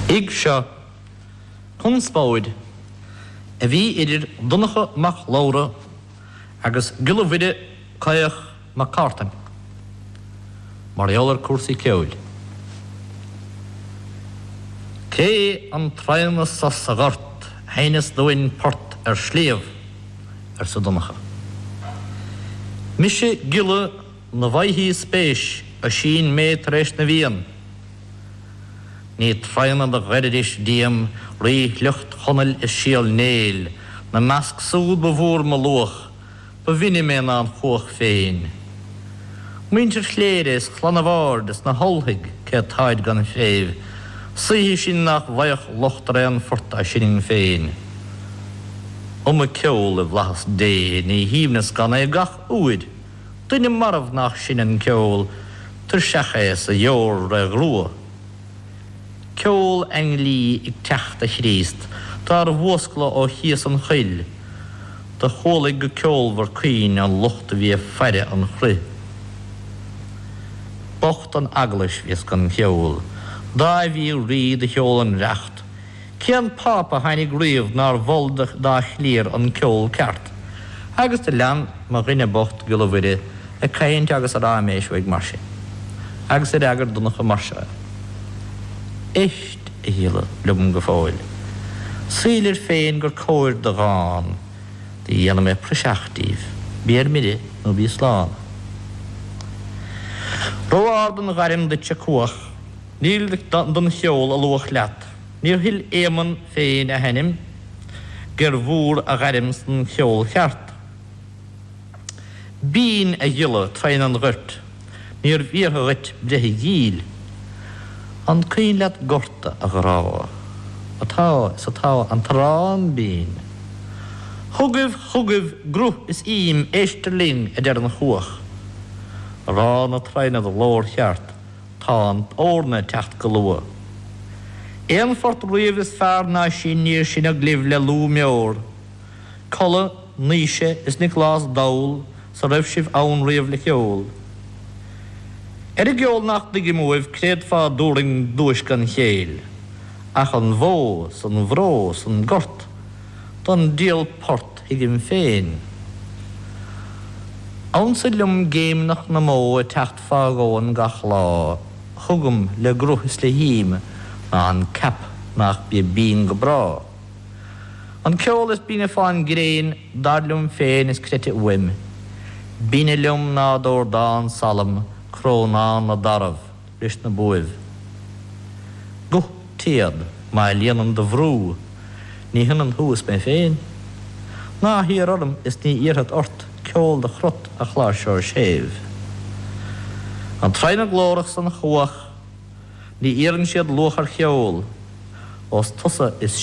Ag seo conspóid a bhí idir Donncha Mac Labhra agus Giolla Mhuire Caoch Mac Cártain mar gheall ar cúrsaí ceoil. Cé an traona so sa ghort sheinneas dúinn port ar shliabh arsa Donncha. Mise Giolla. Muna bhfaighthí spéis Oisín mé tar éis na bhFiann, ní tradhna do ghoiridís díom ríshliocht Chonaill is Síol Néill, 'na measc súd ba mhór mo luach, ba bhinne mé ná an chuach féin. Muintir Chléirigh is Clann an Bhaird is na hUltaigh cé táid gan phréimh, saoithe sinn nách bhfaigheadh locht ar aon phort a sinninn féin. Iomaidh ceol i bhFlaitheas Dé, ní haoibhneas gan é gach uair, Duine marbh nach sinn an ceol tuirseach é 's a dheor re ghrua. Ceol ainglí ag teacht a Chríost dár bhfuascladh ó chíos an choil do chualaidh go ceolmhar caoin an lucht a bhí ag faire an chruidh. Bocht an eaglais bhíos gan cheol Dáibhí rí do sheol an reacht Cén Pápa a tháinig riamh nár mhol dá chliar an ceol ceart? Agus do lean mo dhuine bocht, Giolla Mhuire, ag caint agus ag ráiméis uaidh mar sin. Agus d'fhreagair Donncha mar seo é, Éist, a Ghiolla, liom go fóill. Saoilir féin gur cóir do dhán do dhéana mé praiseach díobh. Bí ar mire nó bí slán. Ró-ard an ghairm duit, a Cuach. Níl don cheol a luach leat. Níor thuill Éamonn féin a hainm gér mhór a ghairm san cheol cheart. Binn a Ghiolla traona an ghoirt níorbh iarrtha dhuit breith a dhíol. An cuimhin leat gorta, a ghrá, atá is atá an t-arán binn. Chugaibh, chugaibh gruth is im, éistear linn, a deir an chuach. Arán a' traona do ghlór cheart, Tá an eorna ag teacht go luath. Aon phort riamh is fearr ná sin níor sinneadh luibh le lúth meor. Colla, Naoise is Nioclás dall 's a raibh sibh ann riamh le ceol. Ar an gceol nach dtuigim uaibh créad fá dtiubhrainn duais gan chéill. Ach an bhó 's an bhró 's an gort don diabhal port thuigim féin. Annsa liom géimneach na mbó ag teacht fágaim gach lá chugam le gruth is le him ná an ceap nach bia binn go bráth. An ceol is binne fá'n gréin, dar liom féin is creidte uaim, binne liom ná dordán salm crónán na dtarbh leis na buaibh. Guth téad má líonann do bhrú ní hionann thú is mé féin. Ná hiarr orm is ní iarrfad ort. ceol do chrot a chláirseoir séimh. An traona glórach 's an chuach ní iarrann siad luach ar cheol ós tusa is.